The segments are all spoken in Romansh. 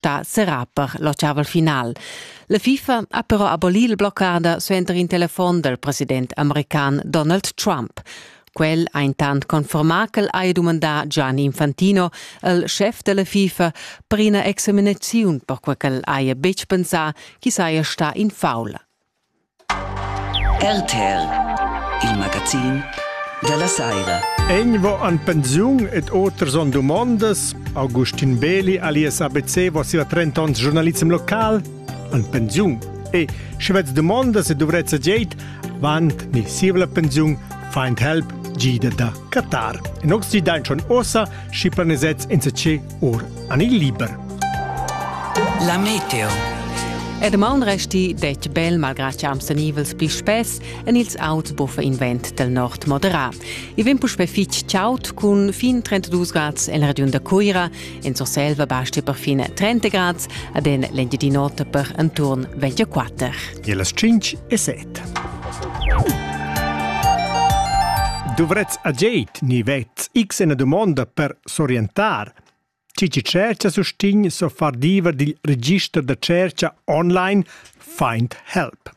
da serrar per l'ottavel final. La FIFA ha però abolì il bloccader suenter in telefon dal president american Donald Trump. Quel ha intant confermà ch'el haja dumandà Gianni Infantino, il schef della FIFA, per ina examinaziun perquai ch'el haja betg pensà ch'i saja stà in faul. RTL, il magazin dalla saira. Egvo an pensiun ed oters on dumondas. Augustin Beli alias ABC va sia 30 ans giornalism local an pensiun. E sche vez dumondas e duvrezza geit, vant ni sivla pensiun, find help gida da Qatar. En oxid dain schon osa, schi planesets inse ce or an il liber. La meteo. Er maun resti detg bel malgrad che am senivels pli spess en ils auts buffa invent del nord moderà. I vem puspe fitg chaut cun fin 32 grads en region da Cuira, en Surselva basti per fine 30 grads, ad en l'engiadinota per intorn 24. E las 5 e 7. Dovrez a Jade ni vet x ena domanda per s'orientar. Chi chi tschercha sustign so far diever dil register da tschercha online Find Help.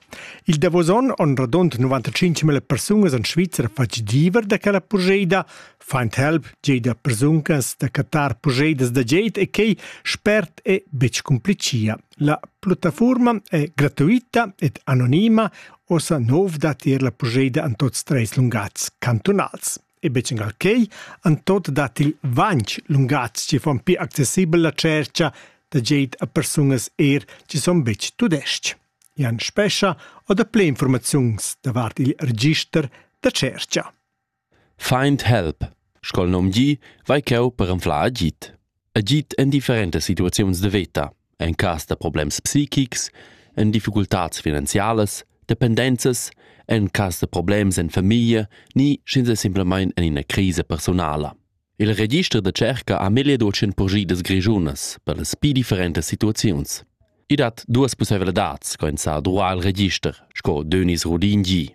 Il davos onn on radund 95.000 persungas en Svizra fatg diever da quella purgeida. Find Help gei da persungas da catar purgeidas da geit e quei spert e betg cumplicia. La plattafurma è gratuita ed anonima, ossa nov da tier la purgeida en tots treis lungats cantunals. e betg engal quei, han tot dat il vanch lungatg che fan pi accessibel la cerca da geit a persunas er che son betg tudesc. Jan Spescha o da ple informaziuns davart il register da cerca. Find help. Scol nom gi, vai cheu per anflar agit. agid en differentas situaziuns de veta, en cas da problems psichics, en difficultads finanzialas, dependenzas, en cas da problems en famiglia ni sch'ins è simplamain en ina crisa personala. Il register da cerca ha megliedocen purgidas grischunas per las pi differentas situaziuns. I dat duas pussevladads, co ins sa druar il register, sco Denis Rodin gi.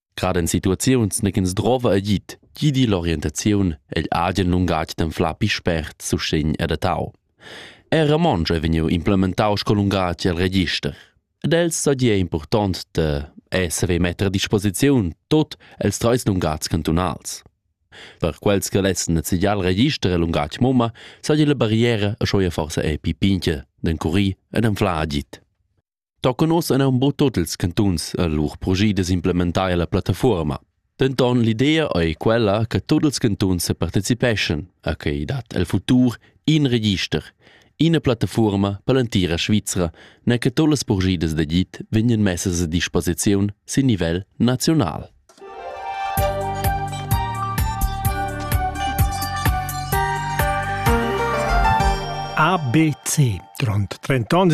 Grad en situaziuns negins drova agid, gidi l'orientaziun egl agen lungatg d'anflar pi spert sustegn adattau. Er romontsch è vegniu implementau sco lungatg el register. Ed els sadia important da esser e metter a disposiziun tot els treis lungatgs cantunals. Per quels che lessen nezigiar il register e lungatg mumma, sa la barriera a schoia forsa è pi pinche d'encurir ed anflar agid. Tocan ossa aunc buc tot ils cantuns a lur proget da s'implementar la plattafuorma. Denton l'idea ei quella che tut ils cantuns separticipeschan, a quei dat el futur in register, ina plattafuorma per l'entira Svizra, ne che tut las progedas da git vegnan messas a disposiziun sin nivel nazional. ABC, grond 38